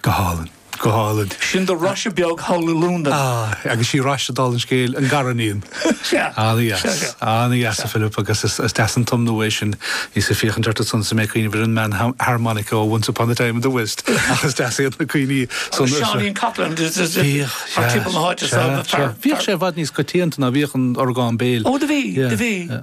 Go hálainn. Go hálainn. Sin do Róise bheag thall i Lúndain. Ah, agus sí Róise d'aithris an scéal, an gariníon. Sea. Ana-dheas. Sea, sea. Ana-dheas, a Philip, agus is deas an tiúin é sin. Bhíos ag féachaint ort ansan is mé ag cuimhneamh ar an bhfear harmonica ó Once Upon a Time in the West, ach is deas iad na cuimhní san. Agus Seáinín Coughlan, ar timpeall na háite san. Sea, sea. Bhíodh sé i bhfad níos coitianta ná, bhíodh an t-orgán béil. Ó, do bhí, do bhí.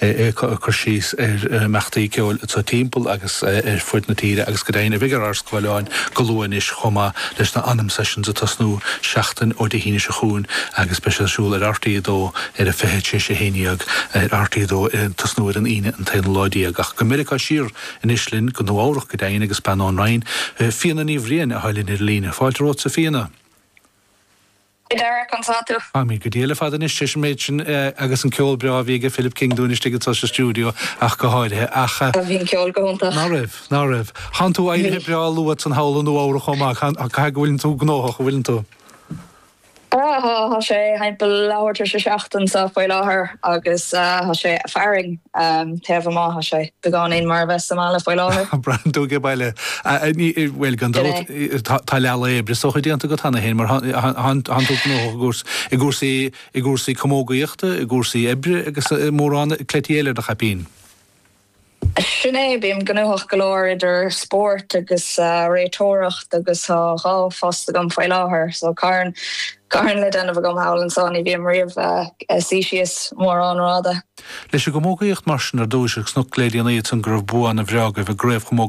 é ag cur síos ar na himeachtaí ceoil sa timpeall agus ar fud na tíre agus go deimhin a bheidh ar ár scáileáin go luath anois chomh maith leis na Anam Sessions ag tosnú seachtain ó Dé hAoine seo chugainn agus beidh siad ar siúl ar RTÉ2 ar a 20:00, is é sin, 11:00 ar RTÉ2 ag tosnú ar an Aoine an t-aonú lá déag ach go Meiriceá siar anois linn go Nua Eabhrach go deimhin agus bean ón Roinn, Fiona Ní Bhriain, atá linn ar an líne. Fáilte romhatsa Fiona! Hi Derek, conas tá tú? Tá mé go diail ar fad anois leis an méid sin agus an ceol breá a bhí aige Philip King dúinn istigh anso sa stiúideo ach go háirithe ach. Bhí an ceol go hiontach. Ná raibh, ná raibh. Thánn tú éirithe Bhí. breá luath ansan thall i Nua Eabhrac chomh maith, caithfidh go bhfuileann tú gnóthach, an bhfuileann tú? Tá, tá sé thimpeall leathuair tar éis a seacht anso faoi láthair agus tá sé ag fearthainn. taobh amuigh, tá sé beagáinín mar a bheith sa mbaile faoi láthair. Braithim tú ag baile. Bhuel, gan dabht, tá leathlá oibre is dócha déanta agat cheana féin mar thánn tú gnóthach i gcúrsaí camógaíochta, i gcúrsaí oibre agus i mórán cleití eile i do chaipín. Sin é, bím gnóthach go leor idir spórt agus réiteoireacht agus tá dhá phost agam faoi láthair, so carn le déanamh agam thall anso, ní bhím riamh ag suí síos mórán rada. Leis an gcamógaíocht mar sin ar dtúis agus cnoc le dreapadh, ní hé amháin go raibh bua ana bhreá agaibh i gCraobh Chamógaíocht na.